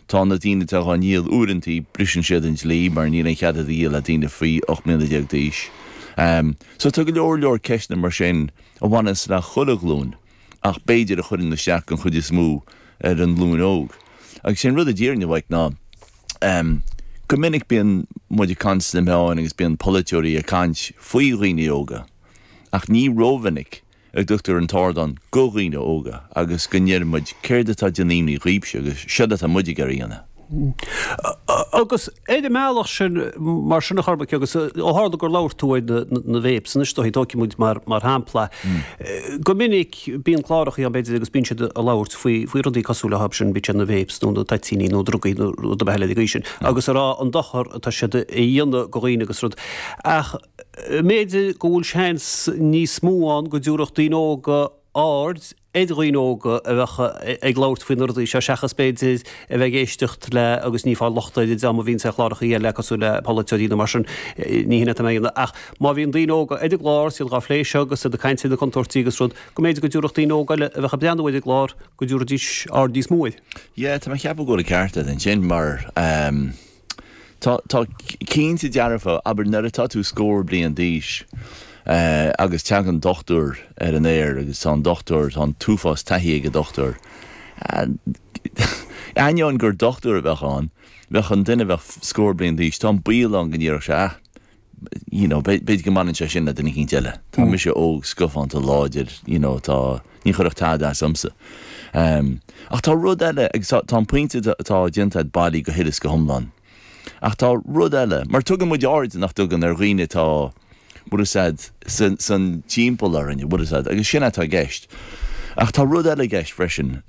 Tá na daoine atá dhá ndíol uaireantaí, briseann siad an dlí mar níl aon chead iad a dhíol le daoine faoi 18 mbliana d'aois. So tá go leor leor ceisteanna mar sin a bhaineanns le chuile ghlúin ach b'fhéidir a chuireann isteach den chuid is mó ar an nglúin óg. Agus sé an rud a déarfainn a Mhaidhc ná go minic bíonn muid ag caint sna meáin agus bíonn polaiteoirí ag caint faoi dhaoine óga ach ní rómhinic a dtugtar an t-ardán do dhaoine óga agus go ndeireann muid 'céard atá ag déanamh imní dhaoibhse' agus 'siod atá muid ag iarraidh a dhéanamh'. Agus ar an mbealach sin, mar sin a Chormaic, agus ó tharla gur labhair tú ar na vapes anois do tógfaidh muid mar shampla, go minic bíonn clárachaí ann, b'fhéidir, agus bíonn siad ag labhairt faoi rudaí cosúil leo sin, bíodh sé na vapes nó na toitíní nó drugaí nó rud ar bith eile ag an aois sin agus ag rá an dochar atá siad a dhéanamh do dhaoine agus rud. Ach. mb'fhéidir go bhfuil seans níos mó ann go dtabharfadh daoine óga aird ar dhaoine óga a bheadh ag labhairt faoi na rudaí seo seachas, b'fhéidir, a bheith ag éisteacht le, agus ní ag fáil locht ar an dream a bhíonns ar chláracha eile cosúil le polaiteoirí nó mar sin, ní shin atá mé a dhéanamh, ach má bhíonn daoine óga ar an gclár, 's iad dhá phlé seo agus iad ag caint ar na contúirtí agus rud, go mb'fhéidir go dtabharfadh daoine óga eile a bheadh ag breathnú ar an gclár, go dtabharfaidís aird níos mó air. Yeah, tá mé ag ceapadh go bhfuil an ceart agat ansin, mar. Tá, tá, cinnte dearfa, abair nuair atá tú scór bliain d'aois agus teagann dochtúir ar an aer agus tá an dochtúir, tá an t-uafás taithí ag an dochtúir, ainneoin gur dochtúir a bheadh ann, bheadh an duine a bheadh scór bliain d'aois, tá an baol ann go ndéarfadh sé, ah, you know, b'fhéidir go mbaineann sé sin le duine eicínt eile. Tá mise óg, scafánta, láidir, you know, tá, ní chuirfeadh tada as dhomsa. Ach tá rud eile, agus tá an pointe atá déanta agat bailí go huile is go hiomlán, ach tá rud eile, mar tugann muid aird, nach dtugann, ar dhaoine atá, bhfuil a fhios agat, san timpeall orainn, bhfuil a fhios agat, agus sin atá i gceist. Ach tá rud eile i gceist freisin.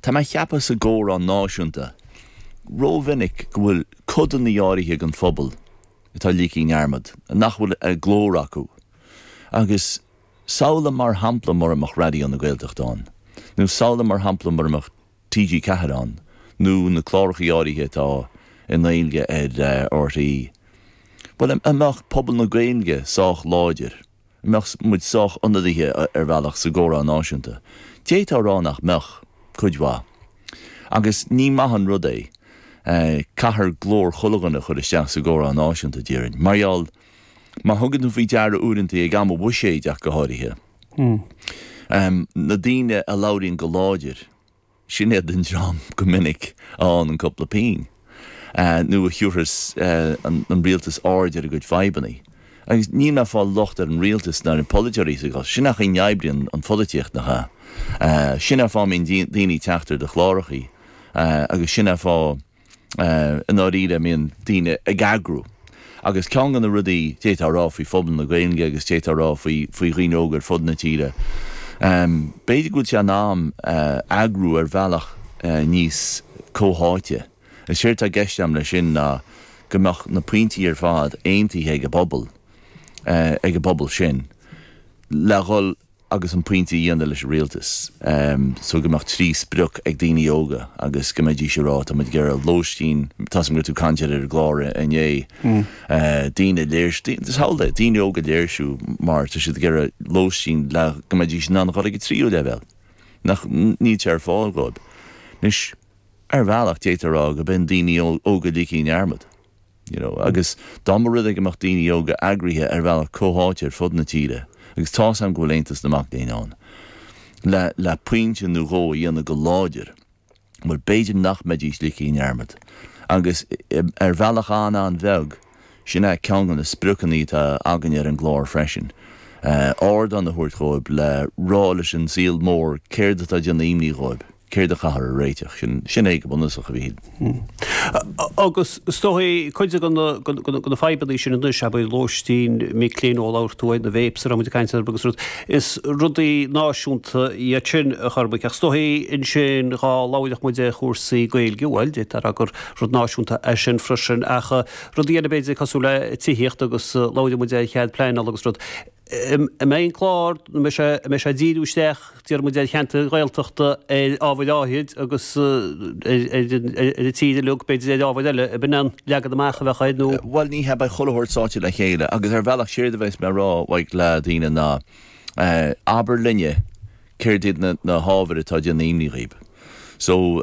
Tá mé ag ceapadh sa gcomhrá náisiúnta rómhinic go bhfuil codanna áirithe den phobal atá ligthe i ndearmad nach bhfuil an glór acu agus samhlaigh mar shampla mura mbeadh Raidió na Gaeltachta ann nó samhlaigh mar shampla mura mbeadh TG4 ann nó na clárachaí áirithe atá i nGaeilge ar RTÉ bhuel an mbeadh pobal na Gaeilge sách láidir An mbeadh muid sách ionadaithe ar bhealach sa gcomhrá náisiúnta? D'fhéadfá a rá nach mbeadh, cuid mhaith. Agus ní maith an rud é. Caithfear glór chuile dhuine a chur isteach sa gcomhrá náisiúnta, déarfainn. Mar gheall, má thugann tú faoi deara uaireantaí, ag am an bhuiséid ach go háirithe, na daoine a labhraíonn go láidir, Sin iad an dream go minic a fhaigheann an cúpla pínn, nó a thiúrfas an rialtas aird ar a gcuid fadhbanna. Agus níl mé ag fáil locht ar an rialtas ná ar na polaiteoirí sa gcás sin, ach sin mar a oibríonn an pholaitíocht, nach ea? Sin é an fáth a mbíonn daoine ag teacht ar do chlárachaí, agus sin é an fáth, I ndáiríre, a mbíonn daoine ag eagrú. Agus ceann de na rudaí a d'fhéadfá a rá faoi phobal na Gaeilge agus d'fhéadfá a rá faoi dhaoine óga ar fud na tíre, b'fhéidir go bhfuil sé in am eagrú ar bhealach níos comhtháite. Is éard atá i gceist agam leis sin ná go mbeadh na pointí ar fad aontaithe ag an bpobal, ag an bpobal sin, le dhul. agus an pointe a dhéanamh leis an rialtas so go mbeadh trí sprioc ag daoine óga agus go mbeidís ag rá, tá muid ag iarraidh lóistín, tá's a'm go raibh tú ag caint air ar an gclár inné, daoine ag léirsiú, mar shampla, daoine óga ag léirsiú mar tá siad ag iarraidh lóistín le go mbeidís in ann a dhul ag an tríú leibhéal ach níl sé ar fáil dhóib. Anois, ar bhealach, d'fhéadfá a rá go mbíonn daoine óga ligthe i ndearmad. you know. Agus dá mba rud é go mbeadh daoine óga eagraithe ar bhealach comhtháite ar fud na tíre, agus tá's a'm go bhfuil Aontas na Mac Léinn ann, le, le pointe nó dhó a dhéanamh go láidir, bhuel, b'fhéidir nach mbeidís ligthe i ndearmad. Agus ar bhealach an-an-bheag, sin é ceann de na spriocanna atá againne ar an gclár freisin, ardán a thabhairt dhóibh le rá leis an saol mór céard atá ag déanamh imní dhóibh. céard a chaithfear a réiteach, sin é go bunúsach, a Mhíchíl. Agus is dóigh é, cuid de na fadhbanna sin anois, abair, lóistín, mic léinn nó labhair tú faoi na vapes a raibh muid ag caint orthu agus rud, is rudaí náisiúnta iad sin, a Chormaic, ach is dóigh é ansin dhá labhródh muid ar chúrsaí Gaeilge, bhuel, deirtear gur rud náisiúnta é sin freisin, ach rudaí eile, b'fhéidir, cosúil le tithíocht agus labhródh muid ar chead pleainála agus rud. An mbeidh an clár nó mbeidh sé mbeidh sé ag díriú isteach déarfaidh muid ar cheantair Ghaeltachta ar ábhair áithrid agus ar an tír uilig b'fhéidir ar ábhair eile ab in an leagan amach a bheas air nó Bhuel ní hea beidh chuile shórt sáite le chéile agus ar bhealach séard a bheas mé ag iarraidh a rá le daoine ná abair linne céard iad na na hábhair atá ag déanamh imní dhaoib so